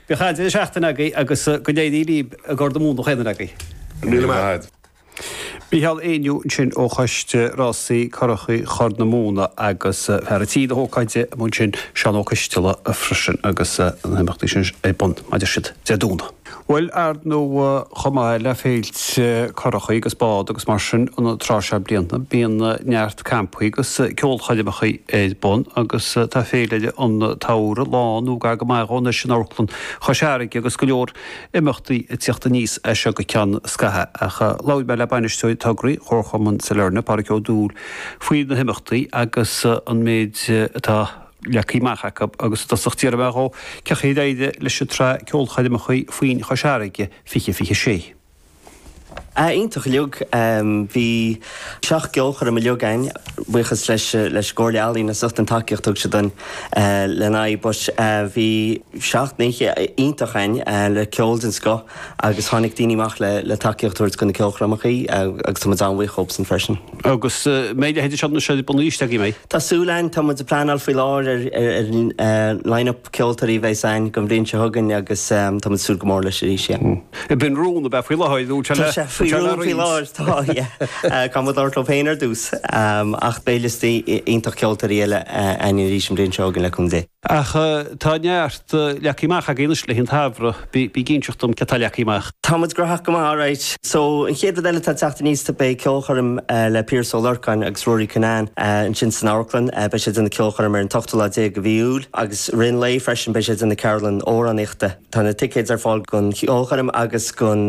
Bíodh an-deireadh seachtaine agaibh agus go n-éirí libh i gCorr na Móna Fainner agaibh. Míle maith. Mícheál Éinniú ansin ó Choiste Rásaí Currachaí Chorr na Móna agus fear an tí na hócáide amuigh ansin, Seán Ó Coisteala freisin agus na himeachtaí sin ar bun mar a deir siad Dé Domhnaigh. Bhuel ar ndóigh chomh maith le féilte currachaí agus bád agus mar sin an tráth seo bliana bíonn neart campaí agus ceolchoirmeacha ar bun agus tá Féile an tSamhraidh lán nó gar go maith dhó anois in Amharclann Chois Fharraige agus go leor imeachtaí ag teacht aníos as seo go ceann scaithe. Ach labhair mé le Bainisteoir Tograí Chomharchumann Sailearna, Pádraig Ó Dúill, faoi na himeachtaí agus an méid atá leagtha amach acu agus i dtosach d'iarr mé dhó cén chaoi a d'éirigh leis an tsraith ceolchoirmeacha Foinn Chois Fharraige 2026. Ah, iontach uilig. Bhí seacht gceolchoirm uilig againn, buíochas leis an gComhairle Ealaíon as ucht an tacaíocht a thug siad dúinn lena aghaidh but bhí seacht n-oíche iontach againn le ceol den scoth agus tháinig daoine amach le tacaíocht a thabhairt do na ceolchoirmeacha agus tá muid an-bhuíoch dhóibhsan freisin. Agus an mbeidh leithéidí seo na seoda bunaithe istigh againn, mbeidh? Tá súil againn, tá muid ag pleanáil faoi láthair ar line-up. ceoltóirí a bheas againn don bhliain seo chugainn agus tá muid ag súil go mór leis arís, yeah. B'in rún ab ea faoi láthair, nó tá sé le roinnt. Tá sé faoi rún faoi láthair, tá, yeah. Caithfidh muid labhairt leo féin ar dtús ach beidh liosta iontach ceoltóirí eile againn arís an bhliain seo chugainn le cúnamh Dé. Ach tá neart leagtha amach agaibh anois le haghaidh an tsamhraidh. Bí ag inseacht dom cad atá leagtha amach. Tá muid graitheach go maith, alright. So, an chéad rud eile atá ag teacht aníos ná beidh ceolchoirm le Piaras Ó Lorcáin agus Ruairí Quinane ansin san amharclann. Beidh sé ag déanamh ceolchoirm ar an t-ochtú lá déag de mhí Iúil agus i rith an lae freisin beidh sé ag déanamh ceardlann amhránaíochta. Tá na ticéid ar fáil don cheolchoirm agus don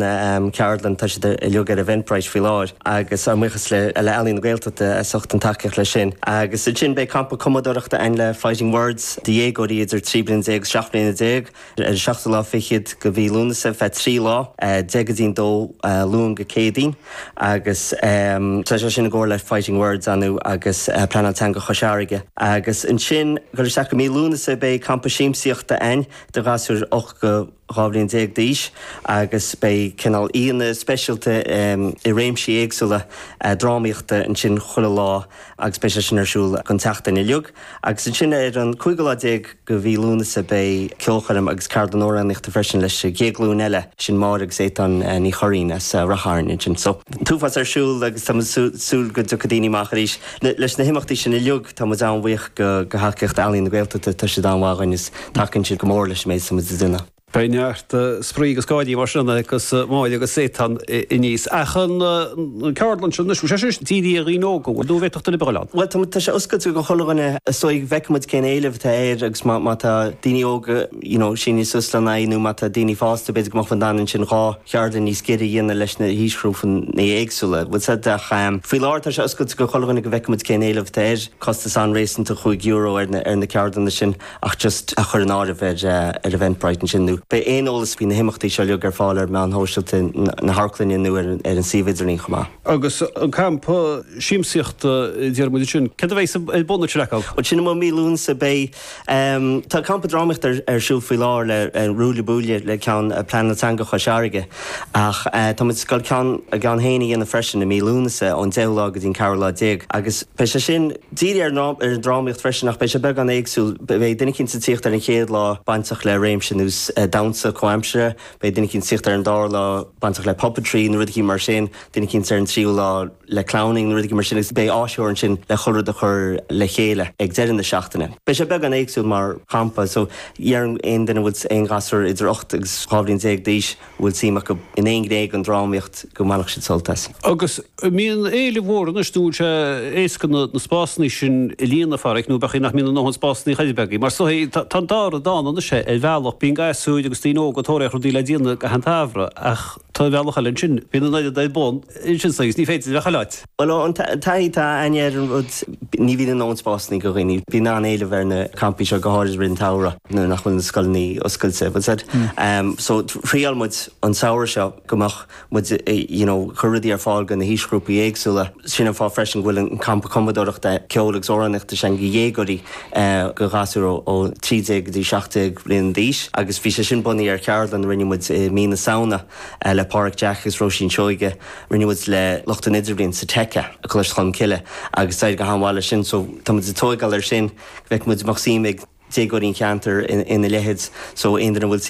cheardlann, tá siad uilig ar Eventbrite faoi láthair agus ár mbuíochas le Ealaín na Gaeltachta as ucht an tacaíocht leis sin. Agus ansin beidh campa cumadóireachta ann le Fighting Words do dhéagóirí idir trí bliana déag agus seacht mbliana déag. ar an seachtú lá fichead de mhí Lúnasa ar feadh trí lá, Dé Céadaoin, ó Luan go Céadaoin, agus tá sé sin i gcomhar le Fighting Words, anu, agus Pleanáil Teanga Chois Fharraige. Agus ansin, ag goil isteach go mí Lúnasa beidh campa siamsaíochta againn do ghasúir ocht go dhá bhliain déag d'aois agus beidh cineál aíonna speisialta i réimsí éagsúla drámaíochta ansin chuile lá. agus beidh sé sin ar siúl an tseachtain uilig agus ansin ar an 15 lá de mhí Lúnasa beidh ceolchoirm agus ceardlann amhránaíochta freisin leis an gcéad ghlúin eile, sin Máire agus Étáin Ní Churraoin as Rath Chairn ansin so an t-uafás ar siúl agus tá muid ag súil go dtiocfaidh daoine amach arís leis na himeachtaí sin uilig. Tá muid an-bhuíoch de thacaíocht Ealaín na Gaeltachta, tá siad an-mhaith dúinn is tacaíonn siad go mór leis an méid atá muid ag déanamh. Beidh neart spraoi agus gáire mar sin agus Máire agus Étan i ndíos. Ach an ceardlann sin anois, bhfuil sé sin dírithe ar dhaoine óga, bhfuil nó bhféadfadh duine ar bith a bheith ann? Bhuel, tá sé oscailte do chuile dhuine so feicfidh muid cén éileamh atá air agus má tá daoine óga, you know, síneann siad suas lena aghaidh nó má tá daoine fásta, b'fhéidir go mbeadh muid in ann ansin dhá cheardlann níos giorra a dhéanamh leis na haoisghrúpanna éagsúla, like you said ach faoi láthair tá sé oscailte do chuile dhuine go bhfeicfidh muid cén éileamh atá air, costas an-réasúnta, cúig euro ar na ceardlanna sin. ach just a chur in áirithe ar Eventbrite ansin, nó beidh aon eolas faoi na himeachtaí seo uilig ar fáil ar mheáin shóisialta na hamharclainne nó ar an suíomh idirlín chomh maith. Agus an campa siamsaíochta deir muid ansin, céard a bheidh ar bun ag sin agaibh? Bhuel, sin i mí Lúnasa beidh. Tá campa drámaíochta ar siúl faoi láthair le Ruaille Buaille le ceann Phlean Teanga Chois Fharraige, ach tá muid ag goil ár gceann féin a dhéanamh freisin i mí Lúnasa ón 10ú lá go dtí an ceathrú lá déag agus beidh sé sin, Dírithe ar an drámaíocht freisin, ach beidh sé beagán éagsúil. Beidh duine eicínt ag tíocht ar an gcéad lá bainteach le réimse nó damhsa comhaimseartha, beidh duine eicínt ag tíocht ar an dara lá bainteach le puppetry nó rud eicínt mar sin, duine eicínt ar an tríú lá le clowning nó rud eicínt mar sin agus beidh áisitheoir ansin le chuile rud a chur le chéile ag deireadh na seachtaine. Beidh sé beagán éagsúil mar champa, so d'aon duine bhfuil aon ghasúr idir ocht agus dhá bhliain déag d'aois, bhfuil suim acu in aon ghné den drámaíocht go mbainfeadh siad sult as. Agus mbíonn éileamh mhór anois nó go bhfuil sé éasca na spásanna sin a líonadh, Pháraic, nó b'fhéidir nach mbíonn a ndóthain spásanna agaibh. Mar is dóigh tá an dá rud ann anois ar bhealach, bíonn gasúir agus daoine óga ag tóraíocht rudaí le déanamh i gcaitheamh an tsamhraidh ach ar an mbealach eile ansin, bíonn an oiread ar bun ansin sa agus ní féidir a bheith chuile áit. Bhuel, ón taithí atá againne ar an rud, ní bhíonn a ndóthain spásanna do dhaoine. Bíonn an-éileamh ar na campaí seo, go háirid i rith an tsamhraidh nuair nach bhfuil na scoileanna oscailte. So thriáil muid an samhradh seo go mbeadh muid you know ag cur rudaí ar fáil do na haoisghrúpaí éagsúla. Sin an fáth freisin go bhfuil an campa cumadóireachta, ceoil agus amhránaíochta sin do dhéagóirí, do ghasúir ó 13 go dtí 17 bhliain d'aois agus bhí sé sin bunaithe ar cheardlann a rinne muid i mí na Samhna. le Pádraig Jack agus Róisín Seoighe, rinne muid le lucht an idirbhliain sa Tech i gColáiste Cholmcille agus d'éirigh go han-mhaith leis sin so tá muid ag tóigeáil ar sin go bhfeicfidh muid an mbeadh suim ag déagóirí an cheantair ina leithid so aon duine a bhfuil suim